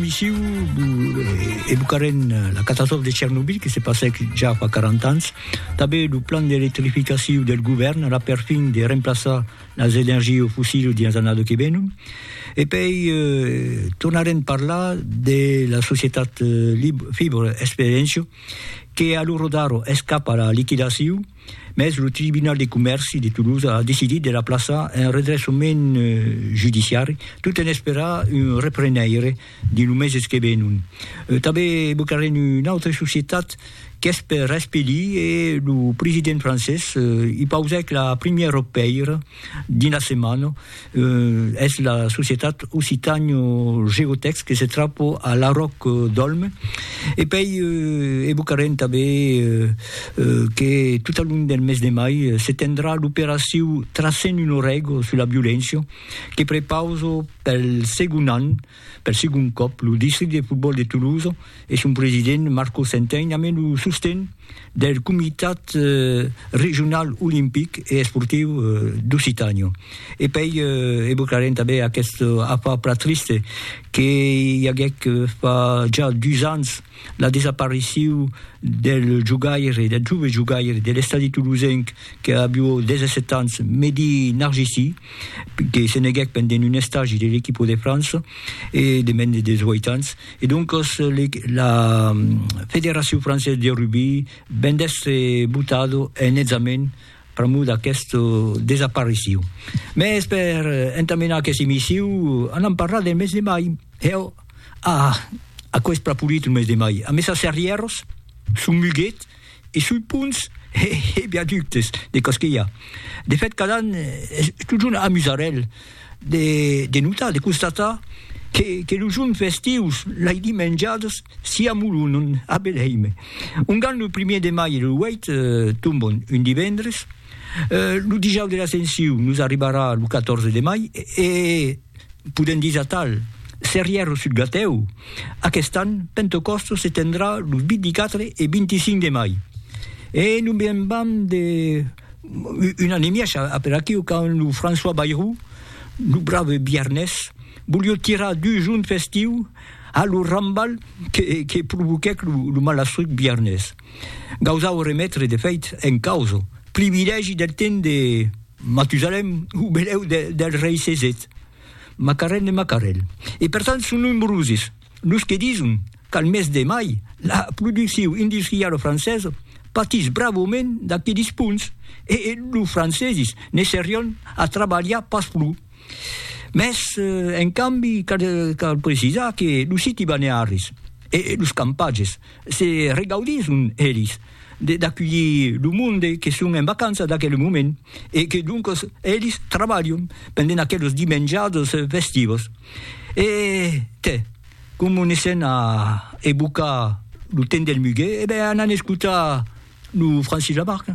Missiu evocarem la catastròfa de Chernobyl que se passèc ja fa 40 ans, tanben lo plan d'electrificaciu del govèrn a la perfin de remplaçar las energies fossils dins la annada que ven, e pei tornarem parlar de la societat Fibre Experientia que a lo rodar es cap a la liquidaciu. Mès lo Tribunal de Comèrci de Tolosa a decidit de la plaçar en redressament judiciari tot en esperar un reprenaire dins lo meses que venon. Tanben evocarem una autra societat qu'es per espelir e lo president francés i pausèc la primièra pèira Dins la setmana, es la societat Occitània Geotèx que se trapa a Laròc d'Òlm. E pei evocarem tanben que tot al long del mes de mai se tendrà l'operacion Tracem un orèga sus la violéncia que prepausa pel segond an Per segon còp, lo districte de fotbòl de Toulouse e son president Marco Centein amèn lo sosten del Comitat Regional Olimpic e Esportiu d'Occitània. E pei evocarem tanben aqueste afar plan triste que i aguèc fa ja dus ans, la desapariciu del jogaire, del jove jogaire de l'Estadi Toulousenc que avió 17 ans, Mehdi Narjisi, que se neguèc pendent un estagi de l'equipo de França e de mens de 18 ans. E doncas la Federacion Française de Rugbi ven d'èstre botado en examen pr'amor d'aquest desapariciu. Mès per entamenar aqueth emissiu anam parlar del mes de mai. Hèu! Ah! Aquò es plan polit lo mes de mai, amb esas arrièros sul Muguet e sul ponts e viaductes de Cosquilha. De fèt, cada an es totjorn amusarèl de notar, de constatar que los jorns festius, lai dimenjadas, s'i amolonon a Beleime. Ongan lo primièr de mai e lo 8 tombon un divendres, lo dijaus de l'Ascensiu nos arribarà lo 14 de mai e, podem dire atal, Serrièr o Sudgatèu, aquest an Pentecòstos se tendrà los 24 e 25 de mai. E non be'n vam de un an e mièg a per aquiu quand lo François Bayrou, lo brave Biarnés, volió tirar dus junts festiu a lo rambal que provoquèc lo malastruc Biarnés. Gausau remetre de fèit en causa privilègi del temps de Matusalem o benèu del rei Cesèt, Macarèl de Macarèl. E per tant son nombroses los que dison qu'al mes de mai la produccion industriala francesa patís bravament d'aqueles ponts e los franceses ne serion a trabalhar pas pro. Mès en cambi cal precisar que los siti balnearis e los campatges Se regaudisson elis d'aculhir lo monde que son en vacança d'aquel moment e que doncas elis trabalhon pendent aqueles dimenjadas festivas. E te, coma ne sèn a evocar lo temps del muguet, e ben anan escotar lo Francis Lamarque.